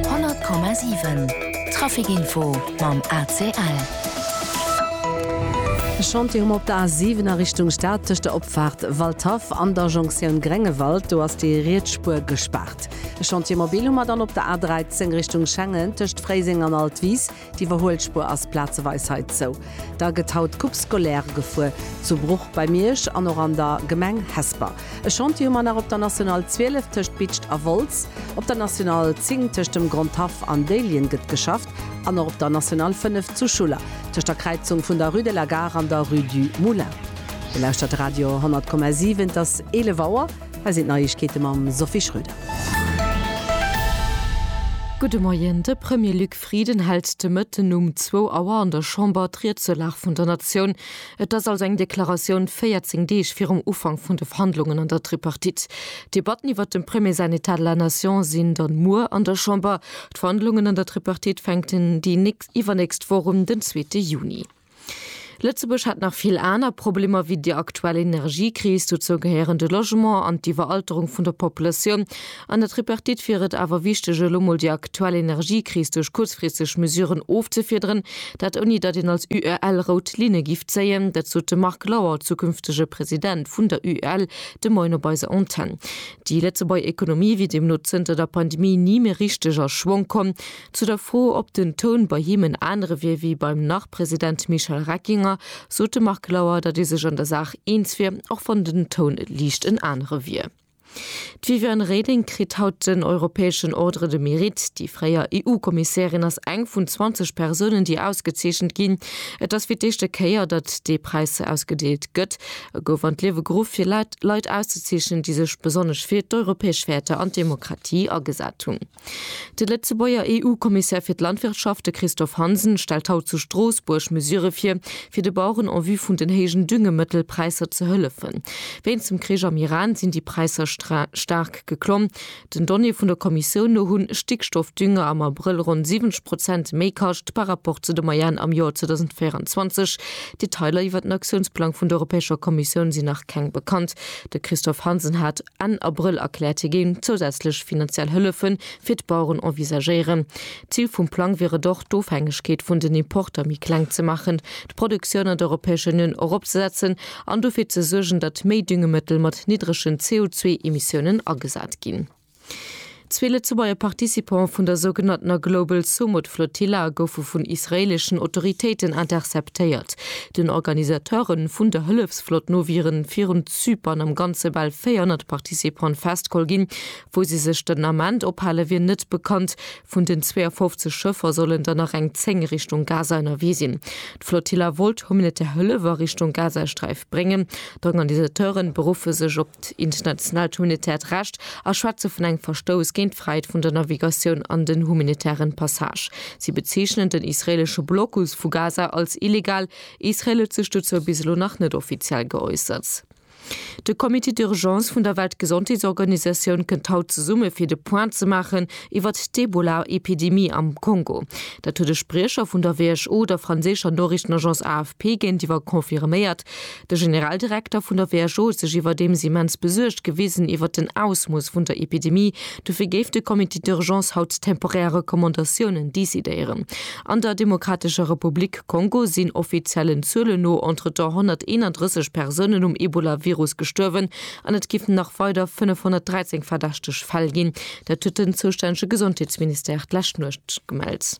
100,7 Trafic-Info mam ACL. E Chantier hu mer op der A 7 a Richtung Stad, tëscht der Opfaart Waldhaff an der Jonktioun Gréngewald. Do ass déi riets Spuer gespaart. E Chantier mobil hu mer dann op der A 13 Richtung Schengen, tëscht Fréiseng an Altwis. D'Iwwerhuelspuer ass plazeweis hei zou. Da gëtt haut d'Coupe scolaire gefuer, zu Bruch bei Miersch an och an der Gemeng Hesper. E Chantier hu mer nach op der National 12 tëscht Bitscht a Wolz. Op der National 10 tëscht dem Grondhaff an Déiljen gëtt geschafft an och op der National 5 zu Schuller tëscht der Kräizung vun der Rue de la Gare an der Rue du Moulin. Dir lauschtert de Radio 100,7. Et ass 11 Auer. Hei sinn d'Neiegkeete mam Sophie Schröder. Gudde Moien. De Premier Luc. Friden hält de Mëtten um zwou Auer an der Chamber d'Riedsulag vun der Natioun. Et ass also eng Deklaratioun 14 Deeg virum Ufank vun de Verhandlungen an der Tripartite. D'Debatten iwwert dem Premier säin Etat de la Nation sinn dann muer an der Chamber. D'Verhandlungen an der Tripartite fänken déi nächst iwwernächst Woch un, den zweete Juni. Lëtzebuerg hätt nach vill aner Problemer wéi déi aktuell Energiekris. Dozou gehéieren de Logement an d'Iwweralterung vun der Populatioun. An der Tripartite wier et awer wichteg, elo mol déi aktuell Energiekris duerch kuerzfristeg Mesuren ofzefiederen. Dat ouni datt een als UEL rout Linne giff zéien. Dat sot de Marc Lauer, zukünftege President vun der UEL, de Moien op eiser Antenn. Déi Lëtzebuerger Ekonomie wier deemno zënter der Pandemie ni méi richteg a Schwong komm. Zu der Fro, ob den Toun bei him en anere wier wéi beim Nach-President Michel Reckinger, sot de Marc Lauer, datt ee sech an der Saach eens wier, och wann den Toun liicht en anere wier. D'Viviane Reding kritt haut den europäeschen Ordre de Mérite. Déi fréier EU-Kommissärin ass eng vun 20 Persounen, déi ausgezeechent ginn. Et ass fir d'éischte Kéier, datt dee Präis ausgedeelt gëtt. E gouf an d'Liewe geruff, fir Leit auszezeechen, déi sech besonnesch fir d'europäesch Wäerter an d'Demokratie agesat hunn. De Lëtzebuerger EU-Kommissär fir d'Landwirtschaft, de Christophe Hansen, stellt haut zu Stroossbuerg Mesure vir, fir de Baueren en vue vun den héijen Düngemëttelpräisser ze hëllefen. Wéinst dem Krich am Iran sinn déi Präisser staark geklomm. Den Donnéeë vun der Kommissioun no hu Stickstoffdünger am Abrëll ronn 70 Prozent méi kascht par Rapport zu de Moyenne am Joer 2024. Detailer iwwert den Aktiounsplang vun der Europäescher Kommissioun sinn nach keng bekannt. De Christophe Hansen hat Enn Abrëll erkläert, hie géing zousätzlech finanziell Hëllefe fir d'Baueren envisagéieren. D'Zil vum Plang wier et och, d'Ofhängegkeet vun den Importer méi kleng ze maachen, d'Produktioun an der Europäescher Unioun eropzesetzen an dofir ze suergen, datt méi Düngemëttel mat niddregen CO2-Emissiounen agesat ginn. Zwee Lëtzebuerger Participante vun der sougenanntener Global Sumud Flotilla goufe vun israeeleschen Autoritéiten interceptéiert. Den Organisateure vun der Hëllefsflott no wieren virun Zypern am Ganze bal 400 Participante festgeholl ginn. Wou si sech den Ament ophale wier net bekannt. Vun den 52 Schëffer sollen der nach eng 10 Richtung Gaza ënnerwee sinn. D'Flotilla wollt humanitär Hëllef a Richtung Gazasträif bréngen. D'Organisateure beruffe sech op d'internationaalt humanitäert Recht a schwätze vun engem Verstouss géint d'Fräiheet vun der Navigatioun an den humanitären Passage. Si bezeechnen den israeelesche Blocus vu Gaza als illegal. Israel huet sech dozou bis elo nach net offiziell geäussert. De Comité d'urgence vun der Weltgesondheetsorganisatioun kënnt haut zesumme fir de Point ze maachen iwwert d'Ebola-Epidemie am Kongo. Dat huet e Spriecher vun der WHO der franséischer Noriichtenagence AFP géintiwwer confirméiert. De Generaldirekter vun der WHO huet sech iwwerdeems immens besuergt gewisen iwwert den Ausmooss vun der Epidemie. Dofir géif de Comité d'urgence haut temporär Recommandatiounen decidéieren. An der Demokratescher Republik Kongo sinn offiziellen Zuelen no entretemps 131 Persounen um Ebola-Virus gestuerwen an et géifen nach weider 513 verdächteg Fäll ginn. Dat huet den zoustännege Gesondheetsministère d'lescht Nuecht gemellt.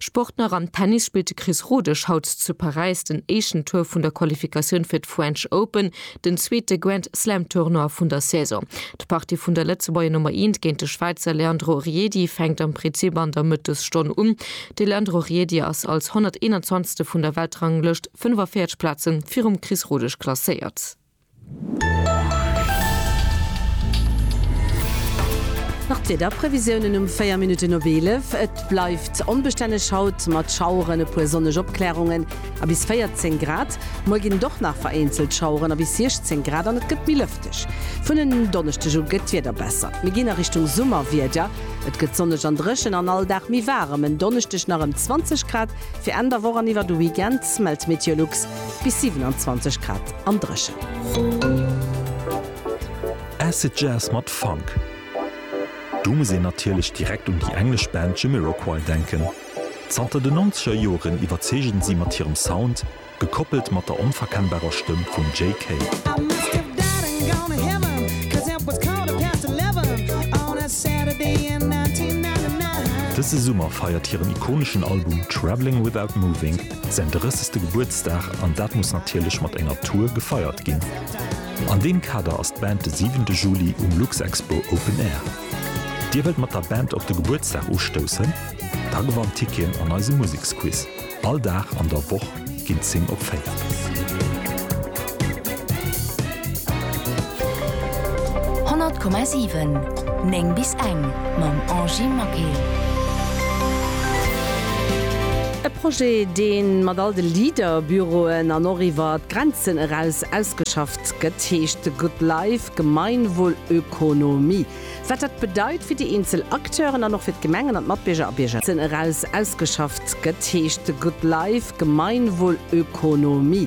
Sport nach, Am Tennis spillt de Chris Rodesch haut zu Paräis den éischten Tour vun der Qualifikatioun fir d'French Open, den zweete Grand-Slam-Tournoi vun der Saison. D'Partie vun der Lëtzebuerger Nummer Eent géint de Schwäizer Leandro Riedi fänkt am Prinzip an der Mëttesstonn un. De Leandro Riedi ass als 121. vun der Weltranglëscht 45 Plaze virum Chris Rodesch klasséiert. Nach d'Wiederprevisiounen um 4 Minutten op 11, Et bleift onbestänneg haut mat Schaueren, e puer sonneg Opklärungen a bis 14 Grad. Muer ginn et och nach vereenzelt Schaueren a bis 16 Grad an et gëtt méi lëfteg. Vun en Donneschdeg u gëtt d'Wieder besser, mir ginn a Richtung Summerwieder. Et gëtt sonneg an dréchen an all Dag méi waarem, en Donneschdeg nach ëm 20 Grad, Fir Enn der Woch an iwwer de Weekend mellt Meteolux bis 27 Grad am Dréchen. Acid Jazz mat Funk, do muss een natierlech direkt un déi englesch Band Jamiroquai denken. Zanter den Nonzeger Joren iwwerzeegen si mat hirem Sound, gekoppelt mat der onverkennbarer Stëmm vum Jay Kay. Dëse Summer feiert hiren ikoneschen Album Travelling Without Moving säin 30. Gebuertsdag an dat muss natierlech mat enger Tour gefeiert ginn. An deem Kader ass d'Band de 7 Juli um Luxexpo Open Air. Dir wëllt mat der Band op de Gebuertsdag ustoussen? Da gewannt Tickien an eisem Museksquiz. All Dag an der Woch ginn d'Sing opféiert. Honnert Komma siwen, néng bis eng, mam Angie Maquet. E Projet, dee mat all de Leader-Büroen an och iwwer d'Grenzen eraus ausgeschafft gëtt, heescht The Good Life, Gemeinwohlökonomie. Wat dat bedeit fir déi eenzel Acteuren an och fir d'Gemengen an d'Matbierger a Bierger. Eraus ausgeschafft gëtt, heescht The Good Life, Gemeinwohlökonomie.